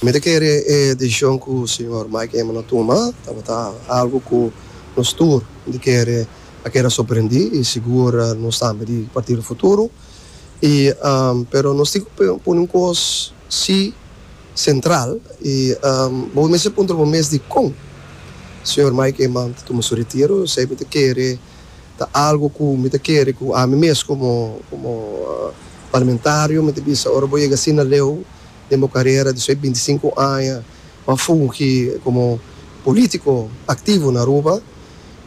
Mi ta kere e desishon ku señor Mike Eman a tuma tabata algu ku nos tur di kere a keda sorprendí i sigur nos tambe di Partido Futuro. I pero nos tin ku pone un kos sí sentral i bo mester puntra bo mes dikon señor Mike Eman ta tuma su retiro. Esei mi ta kere ta algu ku mi ta kere ku ami mes komo komo parlamentario mi ta bisa ora bo yega asina leu. Den bo karera di su e binti sinku aña bo a fungi komo polítiko aktivo na Aruba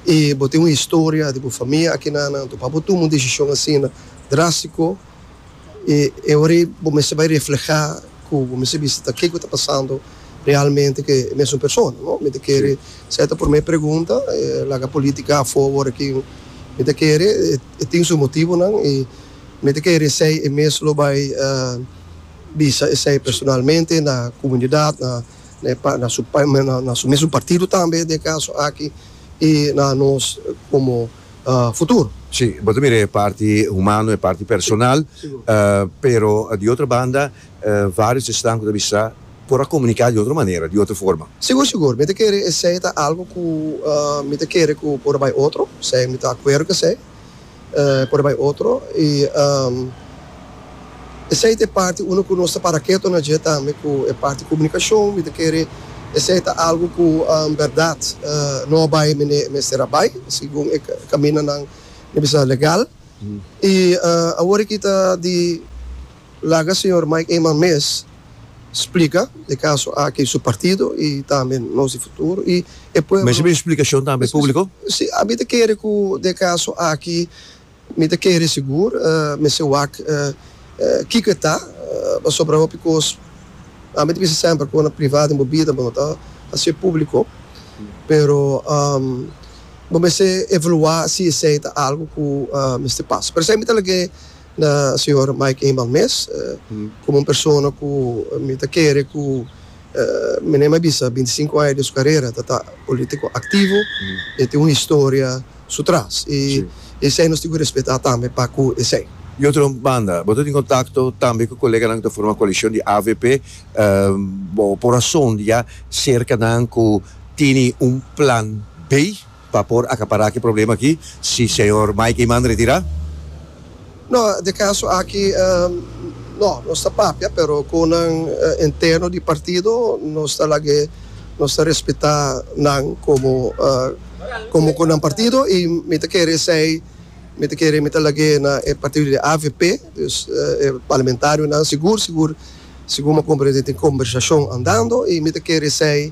i bo tin un historia di bo famia aki na anantu pa bo tuma un desishon asina drástiko i e ora ei bo mester bai reflehá ku bo mester bisa ta ke ku ta pasando realmente ku e mesun persona no. Mi ta kere sa e ta promé pregunta laga polítika afó awor aki mi ta kere e tin su motibunan i mi ta kere esei e mes lo bai. bisa esei personalmente na comunidad, na e pa na su pa na su mesun partido tambe den e caso aki y na nos como futuro. Si, bo ta mira e parti humano, e parti personal, pero di otro banda varios esnan cu ta bisa por a comunica di otro manera, di otro forma. Sigur sigur, mi ta kere esei ta algo cu mi ta kere cu por a bay otro, si mi ta acuerdo cu esei. por e bai otro y esey ta e parti uno cu nos ta para keto na dje tambe cu e parti comunicacion mi ta kere esey ta algo cu berdad no a bai mende mester a bai segun e caminanan mi bisa legal y awor aki ta di. Laga señor Mike Eman mes splica e caso aki su partido y tambe nos di futuro y e pueblo. Mester bin splicacion tambe publico? Si, mi ta kere cu den caso aki mi ta kere sigur mester wak kico e ta pasobra hopi cos ami ta bisa semper cu na privado den bo bida bo no ta haci'e publico pero bo mester evalua si esey ta algo cu mester pasa pero esey mi ta lag'e Na señor Mike Eman mes, komo un persona ku mi ta kere ku mi na e mai bisa binti sinku aña di su karera ta ta polítiko aktivo, e tin un historia su tras i esei nos tin ku respetá tambe pa ku esei. Di otro banda, bo ta tin kontakto tambe ku koleganan ku ta forma koalishon di avp. Bo por a sondia serka nan ku tene un plan B? Pa por acapará ki problema aki si señor Mike Eman retirá? No, den caso aki no, nos ta papia pero cu nan interno di partido nos ta lag'e, nos ta respeta nan como como cu nan partido y mi ta kere esey, mi ta kere mi ta lag'e na e partido di avp, dus e parlamentarionan sigur sigur sigur mi a comprende tin conversacion andando y mi ta kere esey.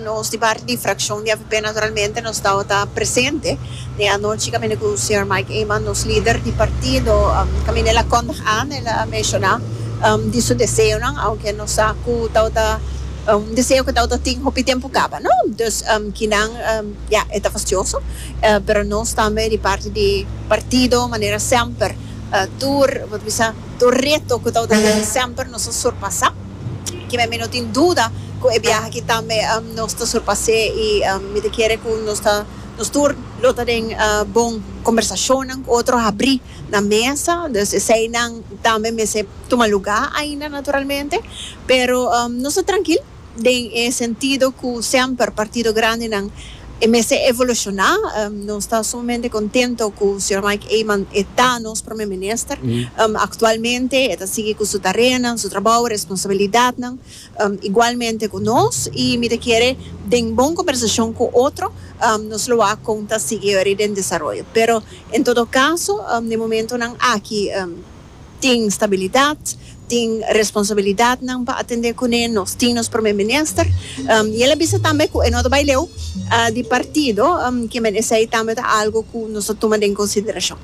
Nos di parti di frakshon di avp naturalmente nos tabata presente den anochi caminda cu señor Mike Eman nos lider di partido caminda el a condag an el a menciona di su deseonan aunque nos sa cu tabata un deseo cu tabata tin hopi tempo caba no dus kinan ya e ta fastioso pero nos tambe di parti di partido manera semper tur bo ta bisa tur reto cu tabata yaga semper nos a surpasa. Kimen mi no tin duda cu e biaha aki tambe nos ta surpas'é y mi ta kere cu nos ta, nos tur lo ta den bon conversacionnan cu otro habrí na mesa, dus eseinan tambe mester tuma lugá ainda naturalmente, pero nos ta trankil den e sentido cu semper partido grandenan. E mester evoluciona. Nos ta sumamente contento cu Sr. Mike Eman e ta nos Prome Minister actualmente. E ta sigui cu su tareanan, su trabou, e responsabilidadnan igualmente cu nos. Y mi ta kere den bon conversacion cu otro nos lo wak con ta sigui den desaroyo. Pero en todo caso den momentonan aki Tin stabilidat, tin responsabilidatnan pa atendé kuné. Nos tin nos Promé Minister i el a bisa tambe ku e no ta bai leu di partido. Kimen esei tambe ta algu ku nos ta tuma den konsiderashon.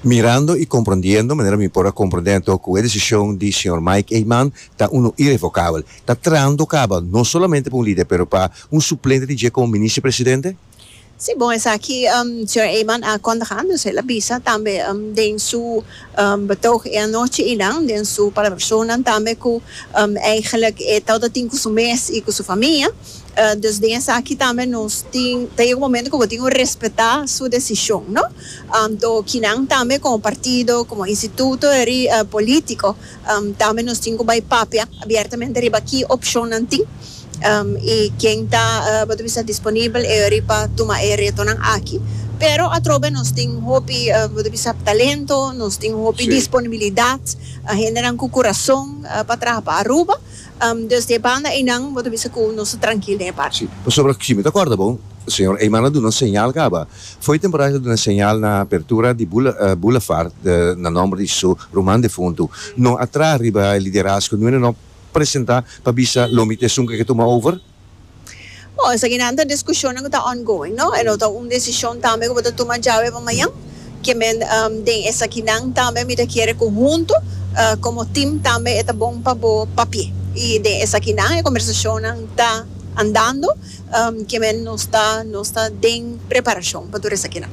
Mirando i komprondiendo manera mi por a komprondé anto ku e desishon di señor Mike Eman ta unu irevokabel, ta trando kaba no solamente pa un lider pero pa un suplente di dje komo Minister Presidente? Si bon esaki Señor Eyman a kontaha nos el a bisa tambe den su betoog e anochi y nan den su palabracionnan tambe cu eigenlijk e tawata a tin cu su mes y cu su famia dus den esaki tambe nos tin ta yega un momento cu bo tin cu respeta su decision no to kinan tambe como partido como instituto eri politico tambe nos tin cu bay papia abiertamente riba ki opcionnan tin. I ken ta bo ta bisa disponibel e ori pa tuma e retonan aki? Pero atrobe nos tin hopi bo ta bisa talento, nos tin hopi disponibilidat, hendenan ku kurason pa traha pa Aruba, dus di e banda einan bo ta bisa ku nos ta trankil den e parti. Si, pasobra si mi ta kòrda bo, señor Eyman a duna un señal kaba for di temporada, el a duna e señal na apertura di Boulevard na nòmber di su ruman difuntu, no a traha riba e liderazgo, no e no. presenta pa bisa lo mi ta esun cu e ke tuma over? Bo, esakinan ta discushonnan cu ta ongoing, no? E no ta un decision tambe cu bo ta tuma djawe pa mañan. Ke men den esakinan tambe mi ta kere cu hunto como team tambe e ta bon pa bo papie. Y den esakinan e conversacionnan ta andando, ke men nos ta nos ta den preparacion pa tur esakinan.